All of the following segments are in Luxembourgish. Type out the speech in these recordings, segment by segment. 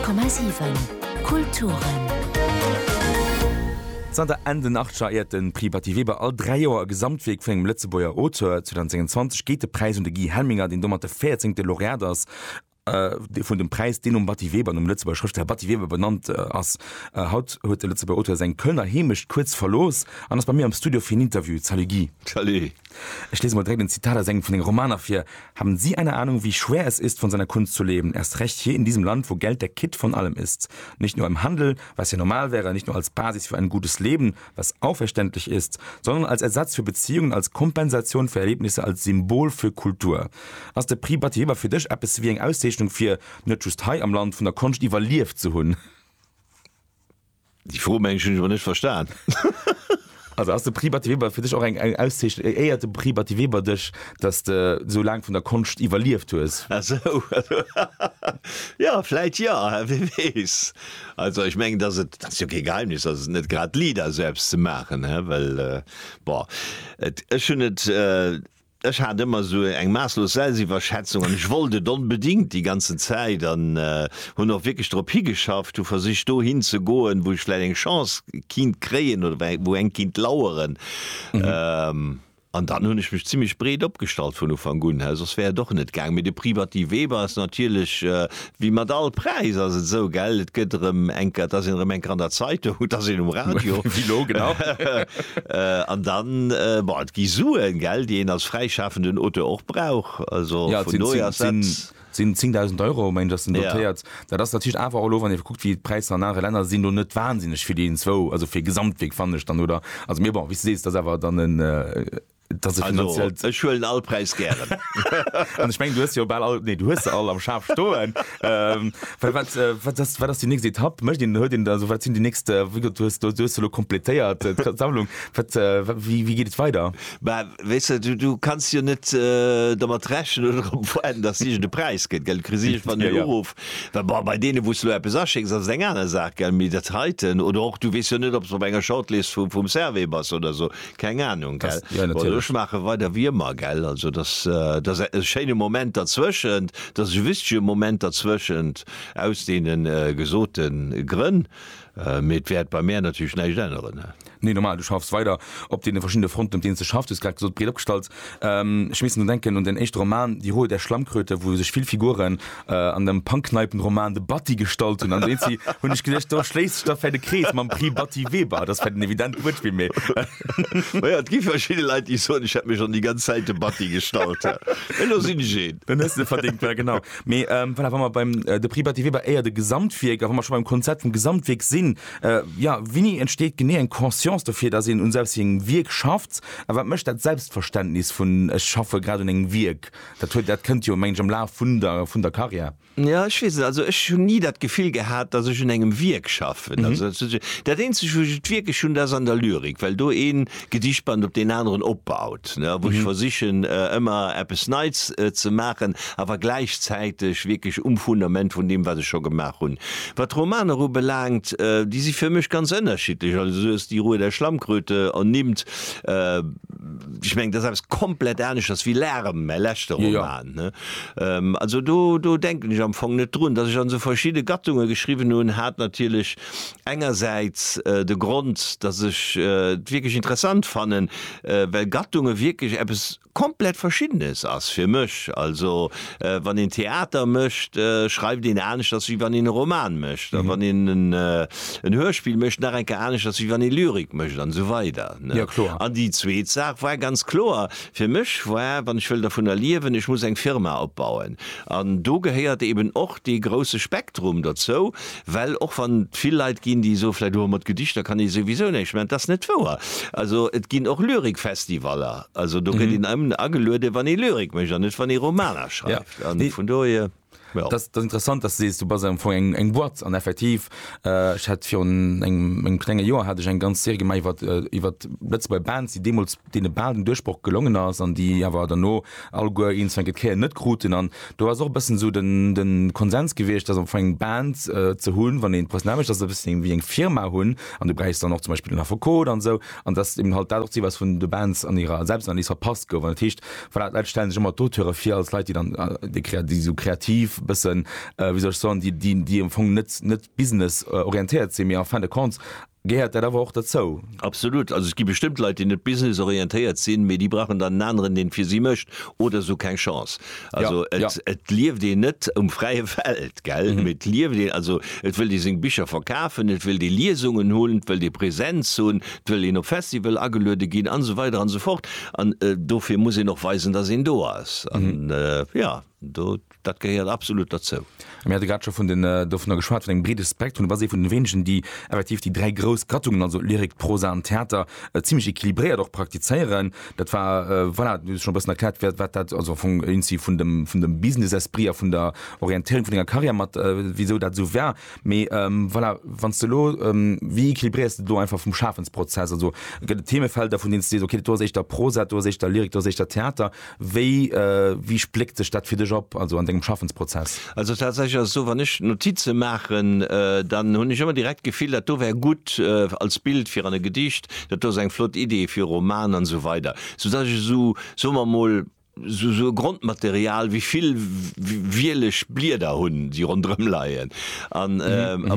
10,7 Kulturen. Zanter Enn den Achtscher éiert de Prix Batty Weber all dräi Joer e Gesamtwierk vun engem Lëtzebuerger Auteur. 2026 geet de Präis un de Guy Helminger, deen domat de véierzéngte Laureat ass vun dem Präis, deen nom Batty Weber, nom Lëtzebuerger Schrëftsteller Batty Weber benannt ass. Haut huet de Lëtzebuerger Auteur seng Kölner Heemecht kuerz verlooss an ass bei mir am Studio fir en Interview. Salut Guy. Salut. Ech lese mol direkt en Zitat aus engem vun senge Romaner vir, Haben Sie eine Ahnung, wie schwer es ist, von seiner Kunst zu leben, erst recht hier in diesem Land, wo Geld der Kitt von allem ist? Nicht nur im Handel, was ja normal wäre, nicht nur als Basis für ein gutes Leben, was auch verständlich ist, sondern als Ersatz für Beziehungen, als Kompensation für Erlebnisse, als Symbol für Kultur. Ass de Prix Batty Weber fir dech eppes wéi eng Auszeechnung, fir net just hei am Land vun der Konscht iwwerlieft ze hunn? Déi Fro mengen ech hunn ech awer net verstan. Also ass de Prix Batty Weber fir dech och eng eng Auszeech éiert de Prix Batty Weber dech, datt s de sou laang vun der Konscht iwwerlieft hues? Ah sou, also jo, vläit jo, wie weess. Also ech mengen, datt et, dat ass jo kee Geheimnis, datt et net grad liit ass sou eppes ze maachen, well bon et, ech hunn et. Ech hat ëmmer sou eng maasslos Selsiwwerschätzung an ech wollt et onbedingt déi ganzen Zäit an hunn och wierklech drop higeschafft, hu versicht dohin ze goen, wou ech vläit eng Chance kinnt kréien oder wou eng kinnt laueren. An dann hunn ech mech zimlech breet opgestallt vun Ufank un, soss wär et och net gaang. Mee de Privati Weber ass natierlech Wéi mat all Präis ass et esou, gell, et gëtt erëm enker, et ass een erëm enker an der Zeitung, et ass een um Radio. Wéi elo, genau. An dann, bon, et gi Suen, gell, déi een als fräischafenden Auteur och brauch. Also Ja, et vun sinn dohier ass dat. zéng, sinn 10.000 Euro, mengen ech, ass den Ja. dotéiert. Dat ass natierlech awer och elo, wann ee kuckt, wéi d'Präisser an anere Länner sinn, elo net wahnsinneg vill, iwwenzwou, also fir Gesamtwierk, fannen ech dann, oder? Also, mee bon, wéi s de sees, et ass awer dann en. Also, ech huelen all Präis gären. An ech mengen, du hues se jo bal all, nee, du hues se all am Schaf stoen. ähm, wat, wat, wat, ass, wat ass déi nächst Etapp? Mécht een, huet een, also wat sinn déi nächst, äh, wéi du hues, du hues se lo kompletéiert, äh, d'Sammlung. Wat, äh, wie, wie geet et weider? Bah, weess du, du kanns jo net äh, dermat rechnen oder drop warden, dass irgend e Präis gëtt, gell? Du kriss irgendwann Ja, den ja. Uruff. Well, bah, bei deene, wou s du lo eppes aschécks, ass et eng aner Saach, gell? Mee dat heiten, oder och, du weess jo net, ob s op enger Shortlist vum, vum Servais bass oder sou. Keng Ahnung, gell? Ja, natierlech. Bon, ech maache weider wéi ëmmer, gell? Also, dass, dass e schéine Moment derzwëschent, dass e wichtege Moment derzwëschent, aus deene gesote Grënn. Mee et wäert bei mär natierlech näischt änneren. Nee, normal, du schaffs weider op deene verschiddene Fronten, op deene s de schaffs. Du hues grad gesot, breet opgestallt. Ech missen drun denken un den éischte Roman, Die Ruhe der Schlammkröte, wou sech vill Figuren, äh, an dem Pankneipenroman de Batti gestalt hun an den sie hun ich gedacht do schléisst sich da fir de Krees mam Prix Batti Weber das fir den evident Wuert wie mir Naja, et gi verschidde Leit, déi soen, ech hätt mech schonn déi ganz Zäit de Batti gestalt. Mä elo sinn ech een. Dann hues de verdingt well genau mee ähm, voilà, wa mer beim äh, de Prix Batti Weber éier de Gesamtwierk a wa mer schon beim Konzept vum Gesamtwierk sinn äh, ja wini entsteet genee eng Conscience dofir dass een un selbst engem Wierk schafft a wat mécht dat Selbstverständnis vun ech schaffe grad un engem Wierk Dat huet, dat kënnt jo mengen ech am Laf vun der, vun der Carrière. Jo, ech weess net, also ech hunn ni dat Gefill gehat, datt ech un engem Wierk schaffen. Also dat eenzeg wou ech et wierklech hunn, dat ass an der Lyrik, well do ee Gedichtband op deen aneren opbaut, ne, wou ech versichen ëmmer eppes Neits ze maachen, awer gläichzäiteg wierklech um Fundament vun deem wat ech scho gemaach hunn. Wat d'Romaner ubelaangt, déi si fir mech ganz ënnerschiddlech, also sou ass déi Ruhe der Schlammkröte ernimmt, Ech meng, dat ass eppes komplett aneschters wéi Larem, mäi leschte Roman, ne? Also do, do denken ech am Fong net drun. Datt ech an esou verschidde Gattunge geschriwwen hunn, hat natierlech engersäits de Grond, datt ech et wierklech interessant fannen, well Gattunge wierklech eppes komplett Verschiddenes ass fir mech. Also wann een Theater mécht, schreift een aneschters wéi wann een e Roman mécht, a wann een en Hörspill mécht, nach eng Kéier aneschters wéi wann ee Lyrik mécht, an esou weider. Ja, kloer. An déi zweet Saach war ganz kloer fir mech war, wann ech wëll dervunner liewen, ech muss eng Firma opbauen. An do gehéiert eeben och dee grouse Spektrum derzou, well och wann et vill Leit ginn, déi soe vläicht, oh, mat Gedichter kann ee souwisou näischt maachen, et ass net wouer. Also et ginn och Lyrikfestivaller, also do gëtt een nëmmen agelueden, wann ee Lyrik mécht an net wann ee Romaner schreift. An vun dohier. Ja. Das, das interessant, dass du sees du bas am Fong eng, eng Boîte an effektiv äh, ich hat fir engem eng klenge Joer hat ich eng ganz Serie gemei iwwer äh, iwwer letzt bei Bands, die demos dee baden Duerchbruch gelungen ass an die awer derno all goer eens enket keier net kruten an du hast och bessen so den den Konsens gewichtcht, dass am Fong eng Band äh, ze hunn, wann een Presnamech, dass e bis wie eng Firma hunn an du bräichst dann noch zum Beispiel den Affekot an so An dass eben halt dat och d'Zil war, wat vun de Bands an hirer Selbstanalyse verpasst gouf. An dat heescht, voilà, d'Leit stellen sech ëmmer d'Auteure vir als Leit, déi dann, déi krea-, déi esou kreativ e bëssen, wéi soll ech soen, déi, déi, déi am Fong net, net business-orientéiert sinn, mee en fin de compte gehéiert dat awer och derzou. Absolut. Also et gi bestëmmt Leit, déi net business-orientéiert sinn, mee déi brauchen dann en aneren, deen et fir si mécht, oder esou keng Chance. Also ja, et, ja. et lieft een net um fräie Feld gell mhm. et lieft een also et wëll Dir seng Bicher verkafen, et wëll Dir Liesungen holen, wëll Dir Präsenz hunn, wëll een op Festival ageluede ginn an so weiter an so fort an äh, dofir muss een och weisen, dass een do ass an mhm. äh, ja do, dat gehéiert absolut dazu. Mir hate grad scho vun den, dovunner geschwat, vun engem breede Spektrum. Du bass ee vun den wéinegen, déi effektiv déi dräi grouss Gattungen, also Lyrik, Prosa an Theater, zimmlech equilibréiert och praktizéieren. Dat war, voilà, du hues scho e bëssen erkläert, wat, wat dat also am Fong insi vun dem, vun dem Business-Esprit a vun der Orientéierung vun denger Karriär mat, wisou dat esou war. Mee, voilà, wann s de elo, wéi equilibréiers de do einfach vum Schafensprozess? Also gëtt et Themefelder, vun deenen s de sees, okay, do ass éischter Prosa, do ass éischter Lyrik, do ass éischter Theater, Wéi wéi spléckt sech dat fir dech op, also an dengem Schaffensprozess? Also tatsächlech ass et esou, wann ech Notize maachen, dann hunn ech ëmmer direkt d'Gefill, dat do wär gutt als Bild fir an e Gedicht, dat do ass eng flott Idee fir e Roman an esou weider, sou dass ech esou, soe mer emol, esou esou e Grondmaterial wéi vill wielech Blieder hunn, déi ronderëm leien. An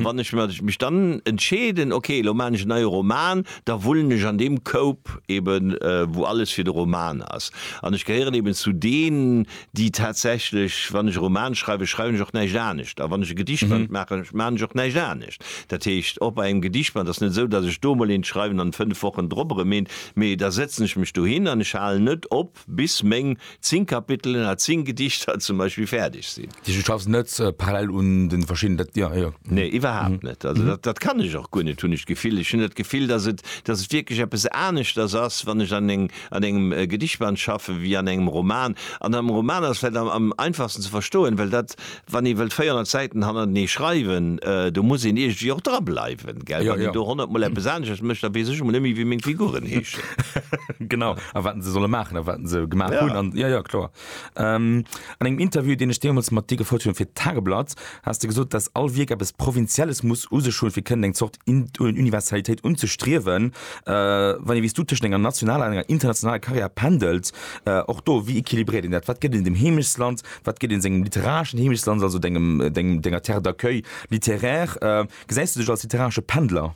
wann ech mech dann entscheeden, ok, elo maachen ech e neie Roman, da wullen ech an deem Koup eben, wou alles fir de Roman ass. An ech gehéieren eben zu deenen, déi tatsächlech, wann ech e Roman schreiwen, schreiwen ech och näischt anescht. A wann ech e Gedichtband maachen, maachen ech och näischt anescht. Dat heescht, och bei engem Gedichtband ass net esou, datt ech do emol eent schreiwen an fënnef Wochen drop erëm eent, mee da sëtzen ech mech dohin an ech halen net op, Bis meng 10 Kapitelen a 10 Gedichter zum Beispill fäerdeg sinn. Du schaffs net parallel un de verschiddenen Dat, jo, jo. Nee, iwwerhaapt net. Also dat, dat kann ech och guer net, hunn ech d'Gefill. Ech hunn dat Gefill, datt et, datt et wierklech eppes aneschters ass, wann ech an eng, an engem Gedichtband schaffen, wéi an engem Roman. An am Roman ass et vläicht am, am einfachsten ze verstoen, well dat Wann ee wëllt 400 Säiten hannertenee schreiwen, do muss een iergendwéi och drableiwen, gell? Wann een do honnert Mol eppes aneschters mécht, da weess ech emol net méi, wéi meng Figuren heeschen. Genau, a wat se solle maachen a wat se gemaach hunn. An jo, jo, kloer. An engem Interview, deen ech deemools mat dir gefouert hunn fir d'Tageblatt, has de gesot, dass all Wierk eppes Provinzielles muss u sech hunn, fir kënnen eng Zort Universalitéit unzestriewen. Wann ee wéi s du tëschent enger nationaler an enger internationaler Karriär pendelt, och do, wéi equilibréiert een dat? Wat gëtt een dem Heemechtsland? Wat gëtt een sengem literareschen Heemechtsland, also dengem, dengem, denger Terre d'accueil littéraire? Gesäis du dech als literaresche Pendler?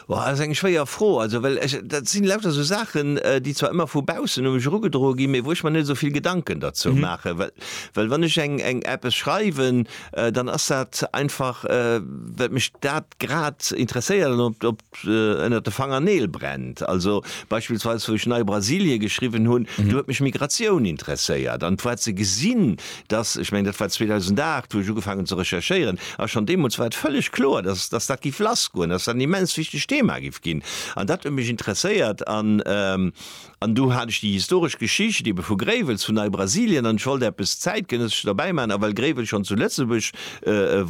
Boah, dat ass eng schwéier Fro. Also, well ech, dat sinn lauter esou Saachen, déi zwar ëmmer vu baussen u mech erugedroe ginn, mee wou ech mer net esou vill Gedanken derzou maachen. Well, well wann ech eng, eng, eppes schreiwen, dann ass dat einfach, well mech dat grad interesséiert an op, op. ënnert de Fangerneel brennt. Also beispillsweis wou ech Nei Brasilie geschriwwen hunn, do huet mech Migratioun interesséiert an d'war ze gesinn, datt, ech mengen dat war 2008 wou ech ugefaangen hunn ze recherchéieren, a schonn deemools war et vëlleg kloer, datt datt dat géif lassgoen, datt dat en immens wichtegt Thema géif ginn. An dat huet mech interesséiert an. An du hat ech déi historesch Geschicht ebe vu Gréiwels, vun Neibrasilien, an ech wollt eppes Zäitgenëssescht derbäi maachen, a well Gréiwels schonn zu Lëtzebuerg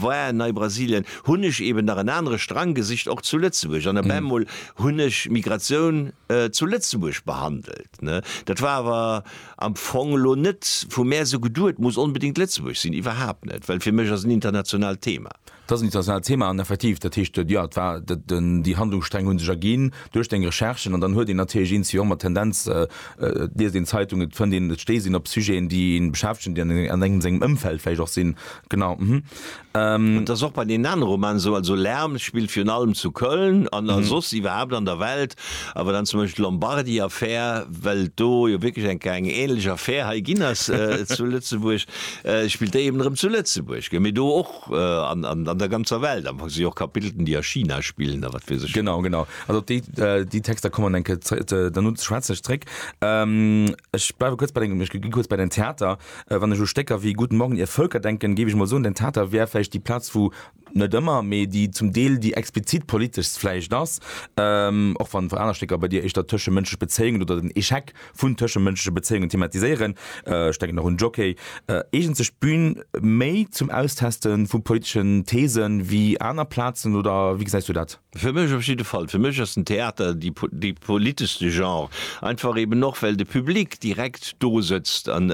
war, Neibrasilien, hunn ech eben nach en anere Strang gesicht, och zu Lëtzebuerg, an op eemol hunn ech Migratioun zu Lëtzebuerg behandelt. Dat war awer am Fong elo net vu mär esou geduet, muss onbedéngt Lëtzebuerg sinn, iwwerhaapt net, well fir mech ass en internationaalt Thema. Dat ass en internationaalt Thema an effektiv, dat heescht, jo, et war dat, déi Handlungssträng hu sech erginn duerch deng Recherchen an dann huet een natierlech eens jo mat Tendenz, et liest een Zeitungen, et fënnt een, et stéisst een op Sujeten, déi ee beschäftegen, déi an an engem sengem Ëmfeld vläicht och sinn. Genau. Hm. Et ass och bei deenen anere Romanen esou, also Lärm spillt virun allem zu Köln an a soss iwwerhaapt an der Welt, awer dann zum Beispill d'Lombardy-Affär, well et do jo wierklech eng eng ähnlech Affär hei ginn ass zu Lëtzebuerg, spillt déi eben erëm zu Lëtzebuerg, mee do och. an der ganzer Welt am Fong si och Kapitelten, déi a China spillen a wat weess ech. Genau, genau. Also op déi, déi Texter kommen eng Kéier ze, ze, dann un schwätze ech zréck. Ech bleiwe kuerz bei dengem, ech gi kuerz bei dein Theater. Wann ech u Stécker wéi Guten Morgen, ihr Völker denken, géif ech emol soen, dein Theater wär vläicht déi Plaz, wou, net ëmmer, mee déi zum Deel déi explizit politeschst vläicht ass, och wann aner Stécker bei dir éischter tëschemënschlech Bezéiungen oder den Échec, vun tëschemënschleche Bezéiungen thematiséieren, ech denken och un Jockey, eegent sech d'Bün méi zum Austeste vu politeschen These wéi aner Plazen, oder wéi gesäis du dat? Fir mech op jidde Fall. Fir mech ass den Theater dee politeschste Genre, einfach eeben och well de Public direkt do sëtzt an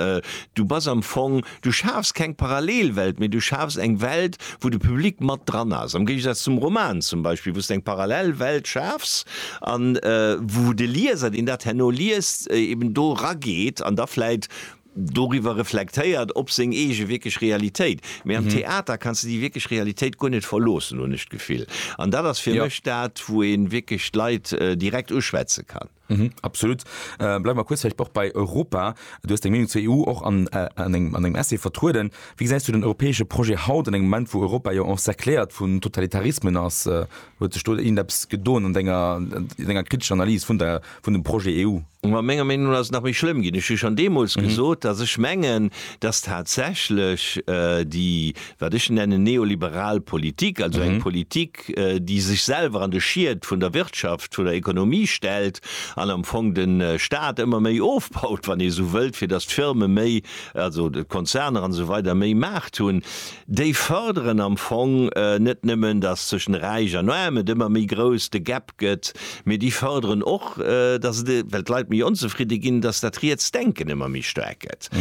du bass am Fong, Du schafs keng Parallelwelt, mee du schafs eng Welt, wou de Public mat dran ass. Am Géigesaz zum Roman zum Beispill, wou s d'eng parallel Welt schafs a wou de Lieser, deen dat herno liest, eben do rageet an da vläit doriwwer reflektéiert, op seng eege wierklech Realitéit. Mee am Theater kanns de déi wierklech Realitéit guer net verloossen, hunn ech d'Gefill. An dat ass fir mech dat, wou ee wierklech d'Leit direkt uschwätze kann. Mhm, absolut. Äh, bleif mal kurz vielleicht auch bei Europa. Du hast eng Meinung zur EU och an, äh, an engem an engem Essay vertrueden. Wie gesäis du den europäesche Projet haut an engem Moment, wou Europa jo encercléiert vun Totalitarismen ass? Äh, huet sech do irgendeppes gedoen an denger, an denger kritescher Analys vun der, vun dem Projet EU? Ma menger Meenung no ass et nach méi schlëmm ginn. Ech hu schonn deemools Mhm. gesot, datt ech mengen, datt tatsächlech äh, déi, wat ech nennen, neoliberal Politik, also eng Mhm. Politik, Politik, déi sech selwer an de Schied vun der Wirtschaft, vun der Ekonomie stellt an am Fong de Stat ëmmer méi ofbaut, wann ee esou wëllt, fir datt d'Firme méi, also d'Konzerner an esou weider méi Maart hunn, déi förderen am Fong net nëmmen, datt tëschent Räich an Aarm et ëmmer méi grouss de Gap gëtt, mee déi förderen och, datt et, well d'Leit méi onzefridde ginn, datt dat riets Denken ëmmer méi staark gëtt.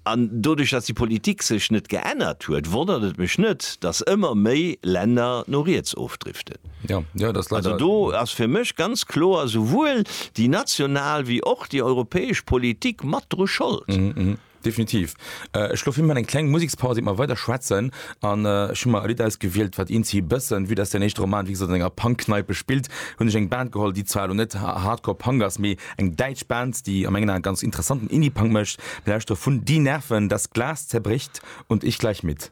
An doduerch, datt déi Politik sech net geännert huet, wonnert et mech net, datt ëmmer méi Länner no riets ofdriften. Also do ass fir mech ganz kloer souwuel déi national wéi och déi europäesch Politik mat dru Schold. Definitiv. Ech elo filmen eng kleng Musekspaus iert mer weider schwätzen. An ech hu mer e Lidd ausgewielt, wat eenzi e bëssen, vue dass däin éischte Roman wéi gesot an enger Punkkneipe spillt, hunn ech eng Band geholl, déi zwar elo net Hardcore Punk ass, mee Eng däitsch Band, déi a mengen Ae ganz interessanten Indie-Punk mécht. Mir lauschtere vun Die Nerven, Das Glas zerbricht und ich gleich mit.